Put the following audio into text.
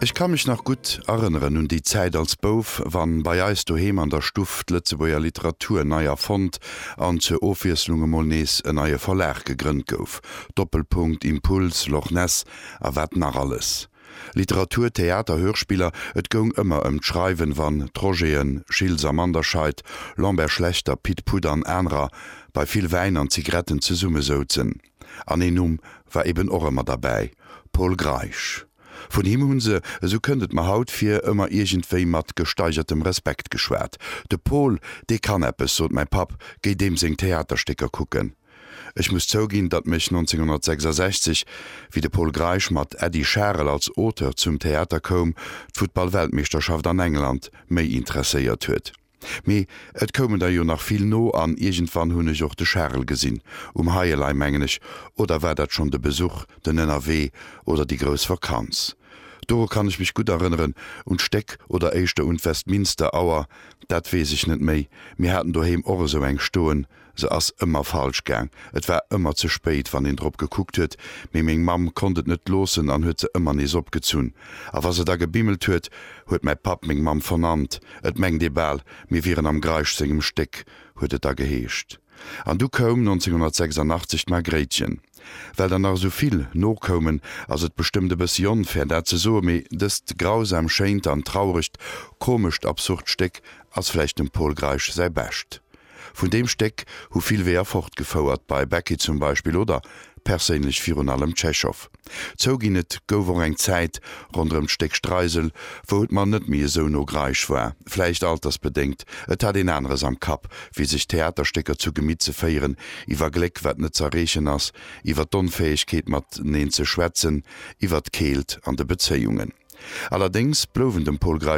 Ech ka mech nach gutt erënneren un déi Zäit als Bouf, wann bei eis doheem an der Stuff d'Lëtzebuerger Literatur nei erfonnt an zur Ofwiesslung emol nees e neie Verlag gegrënnt gouf, Doppelpunkt, Impuls, Loch Ness a wat nach alles. Literatur, Theater, Hörspiller, et goung ëmmer ëm d'Schreiwen, wann d'Rogéen, Schiltz a Manderscheid, Lambert Schlechter, Pit Put an anerer bei vill Wäin an Zigretten zesummesouzen. An een Numm war eben och ëmmer derbäi, Pol Greisch. Vun him hu se, esou kënnt et mer haut vir, ëmmer iergendwéi mat gesteigertem Respekt geschwat. De Pol, dee kann eppes, sot mäi Papp, géi deem seng Theaterstécker kucken. Ech muss zouginn, datt mech 1966, wéi de Pol Greisch mat Äddi Scharel als Auteur zum Theater koum, d'Futtball-Weltmeeschterschaft an England méi interesséiert huet. Mee et koumen der jo nach vill no an iergendwann hunn ech och de Charel gesinn, um Heielei mengen ech, oder war dat schonn de Besuch, den Ënnerwee oder déi grouss Vakanz? Doru kann ech mech gutt erënneren, un d'Stéck oder éischter un d'Westminster Auer, dat weess ech net méi, mir haten doheem och esou eng stoen, Se ass ëmmer falsch gaang. Et war ëmmer ze spéit, wann een drop gekuckt huet, mee meng Mamm konnt et net loossen an huet se ëmmer nees opgezunn. A wa se da gebimmelt huet, huet mäi Papp meng Mamm vernannt. Et mengt ee bal, mir wieren am Greisch sengem Stéck, huet et da geheescht. An du koum 1986 d'Margréitchen. Well der nach esou vill nokoumen, ass et bestëmmt e bëssi onfair, dat ze soen, mee dëst grausam schéint an trauregt, komescht, absurd Stéck ass vläicht dem Pol Greisch säi Bescht. Vun deem Stéck hu vill Weeër fortgefouert, bei Becky zum Beispill oder perséinlech virun allem Tschechow. Zouginn, et gouf och eng Zäit ronderëm d'Stéck Streisel, wou et mer net méi esou no Greisch war. Vläicht altersbedéngt, et hat een aneres am Kapp, wéi sech Theaterstécker zu Gemitt ze féieren, iwwer Gléck, wat net z'erreechen ass, iwwer d'Onfäegkeet mateneen ze schwätzen, iwwer d'Keelt an de Bezéiungen. Allerdéngs blouwen dem Pol